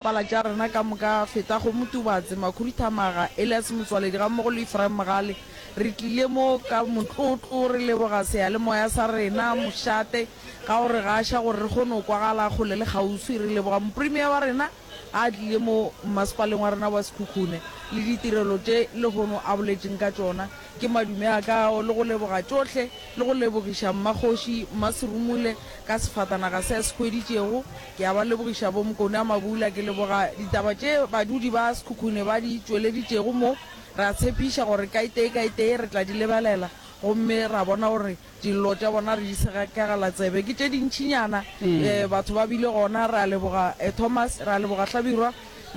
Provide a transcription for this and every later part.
Pala tša rena ka moka, Feta Kgomo Tubatse, Makhuri Thamaga, Elias Motswaledi gammogo le Ephraim Mogale, re tlile mo ka motlotlo re leboga seyalemoya sa rena, mošate, ka go re gaša gore re kgone go kwagala kgole le kgauswi. Re leboga moprimiya wa rena ga a tlile mo mmasepaleng wa rena wa Sekhukhune le ditirelo tše lehono a boletšeng ka tšona. Ke madume a ka ao le go leboga tšohle le go lebogiša Mmakgoši Mmaserumule ka sefatanaga se a se hweditšego. Ke a ba lebogiša bo Mkone a Mabula, ke leboga ditaba tše badudi ba Sekhukhune ba di tšweleditšego mo. Re a tshepiša gore kaitee kaitee re tla di lebelela gomme ra bona gore dillo tša bona re di segakegela tsebe. Ke tše dintšinyana, batho ba bile gona. Re a leboga Thomas, re a leboga Hlabirwa,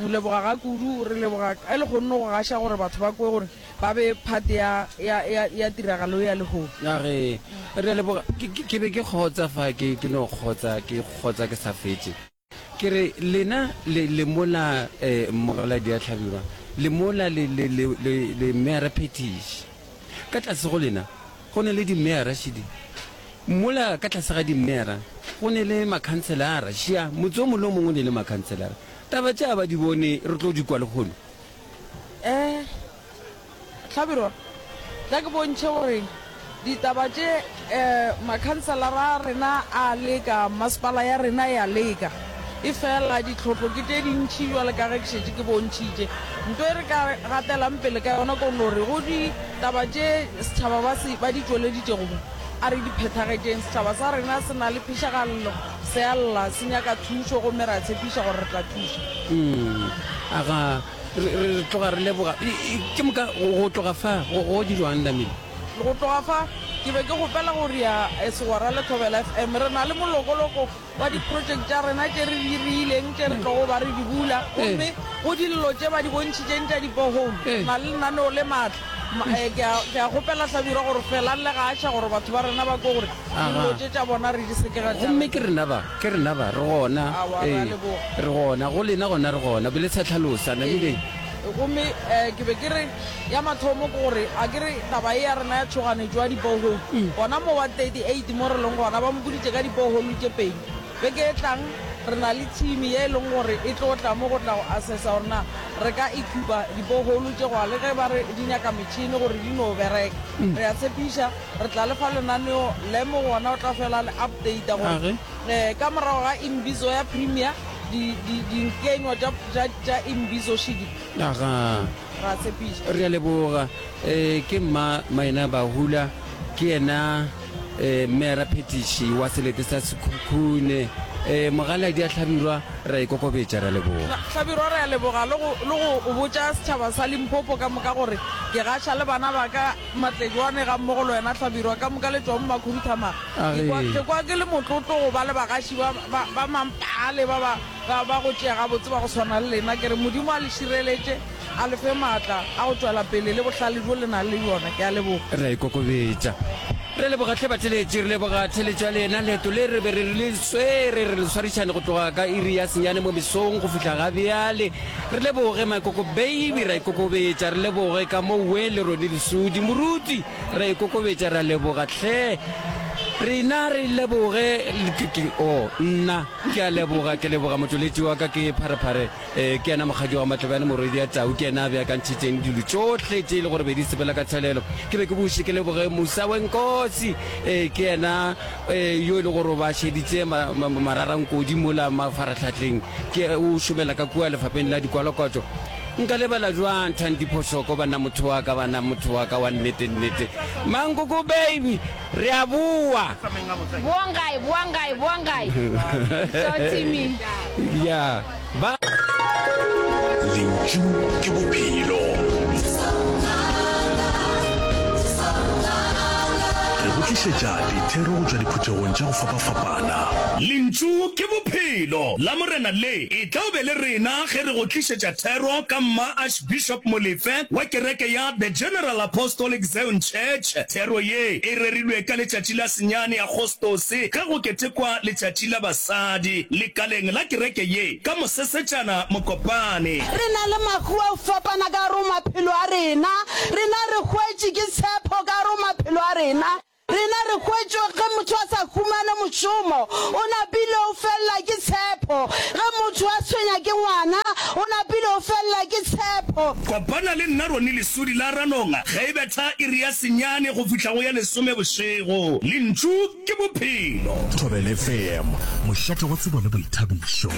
leboga ga kudu, re leboga ka legonno go gaša gore batho ba kwe gore ba be part ya, ya, ya, ya tiragalo ya lehono. Ya re, re a leboga. Ke, ke, ke be ke kgotsa fa ke, ke no kgotsa, ke kgotsa ke sa fetše. Ke re, lena le, le mola, eh, Mmogaladi a hlabiwa, le mola le, le, le, le, le Meyara Phethiši. Ka tlase go lena go ne le dimeyara, šidi. Mola ka tlase ga dimeyara go ne le makhanselara, šia. Motse o mongwe le o mongwe o ne le makhanselara. Taba tše a ba di bone, re tlo di kwa lehono. Eh, Hlabirwa, tla ke bontšhe gore ditaba tše eh, makhanselara a rena a leka, masepala ya rena ya leka. E fela ditlhotlo ke tše dintšhi jwale ka ge ke šetše ke bontšhitše. Nto e re ka gatelang pele ka yona ko no re go ditaba tše setšhaba ba se ba di tšweleditšego mo, a re di phethagetšeng. Setšhaba sa rena se na le phešagallo. Se a lla, se nyaka thušo, gomme re a tshepiša gore re tla thuša. Umm, aga, re, re, re tloga re leboga. I, i, ke moka go, go tloga fa, go, go dirwang, Lamile? Go tloga fa, ke be ke kgopela go ria e segwera le Thobela FM. Re na le molokoloko wa diprojeke tša rena tše re di riileng, tše re tlogo ba re di bula. Gomme go dillo tše ba di bontšhitšeng tša dibohole, re na le lenaneo le matla. Ma, eh, ke a- ke a kgopela hlabirwa gore felang le gaša gore batho ba rena ba kwe gore Aha. dilo tše tša bona re di seke ra gomme ke rena ba ke rena ba re gona Aowa, re a ee, leboga. re gona go lena gona re gona be le sa tlhalosa namile gomme um ke be ke re ya mathomo ke gore a ke re taba e ya rena ya tshoganetso ya dipoholo gona mo wa 38 mo re leng gona ba mo boditše ka dipoholo tše pedi Beke e tlang, re na le thimi ye e leng gore e tlo tla mo go tla go asesa gore na re ka ekipa diboholu tše goa le ge ba re di nyaka metšhini gore di no bereka. Re a tshepiša re tla le fa lenaneo le mo go ona o tla fela le updata gore ka morago ga Imbizo ya Premier, di, di, dinkenywa tša, tša, tša Imbizo Shidi. Re a tshepiša. Re a leboga. Ee, ke Mma Maina Bahula, ke yena Mmeara Phetiši wa selete sa Sekhukhune. Ee, Mogaladi a Hlabirwa, re a ikokobetša. Re a leboga. Hlabirwa, re a leboga le go, le go botša setšhaba sa Limpopo ka moka gore ke gaša le bana ba ka, Matlejwane gammogo le wena Hlabirwa, ka moka le tšwa mo Makhunthamaga. Ke kwa, ke kwa ke le motlotlo go ba le bagaši ba, ba, ba mampaale ba ba. Ba ba go tšea gabotse ba go swana le lena, ke re Modimo a le šireletše, a le fe maatla a go tšwela pele le bohlale bjo le nang le bjona. Ke a leboga. Re a ikokobetša. Re leboga hle batleletši, re leboga theletšo ya lena. Leeto le re be re le swere re le swarišane go tloga ka iri ya senyane mo mesong go fihla ga bjale. Re leboge Makoko Baby, ra ikokobetša. Re leboge ka mo we le Ronnie Lesudi. Moruti, ra ikokobetša, re a leboga hle. Rena re leboge, ke, ke, oh, nna. Ke a leboga, ke leboga motšweletši wa ka ke Pharephare. Ee, ke yena Mokgadi wa Matlebjane, Morwedi ya Tau, ke yena a beakantšhitšeng dilo tšohle tše e le gore be di sepela ka tshelelo. Ke be ke buše ke leboge Musawenkosi, ee, ke yena ee, yo e le gore o ba šeditše ma, ma, mararankodi mola mafarahlahleng, ke, o šomela ka kua Lefapeng la Dikwalokotšo. Nka lebala bjang Thandi Phoshoko, banna motho wa ka, banna motho wa ka wa nnete-nnete. Mankoko baby, Re a boa. Boang gae, boang gae, boang gae. So Timmy. Ya, ba. Lentšu ke bophelo. Re go tlišetša dithero go tšwa diphuthegong tša go fapafapana. Lentšu ke bophelo la Morena le etla o be le rena ge re go tlišetša thero ka mma. Bishop Molefe wa kereke ya The General Apostolic Zion Church, thero ye e rerilwe ka letšatši la senyane Agostose ge go ketekwa letšatši la basadi. Lekaleng la kereke ye ka Mosesetšana Mokopane. Re na le makhuwa a go fapana ka gare go maphelo a rena. Rena re hwetše ke tshepho ka gare go maphelo a rena. Rena re hwetšwe ge motho a sa humane mošomo, o napile o felela ke tshepho, ge motho a tshwenya ke ngwana, o napile o felela ke tshepho. Kopana le nna Ronnie Lesodi la Ranonga ge e betha iri ya senyane go fihla go ya lesome bošego. Lentšu ke Bophelo. Thobelfm, mošate wa tsebo le boithabišo.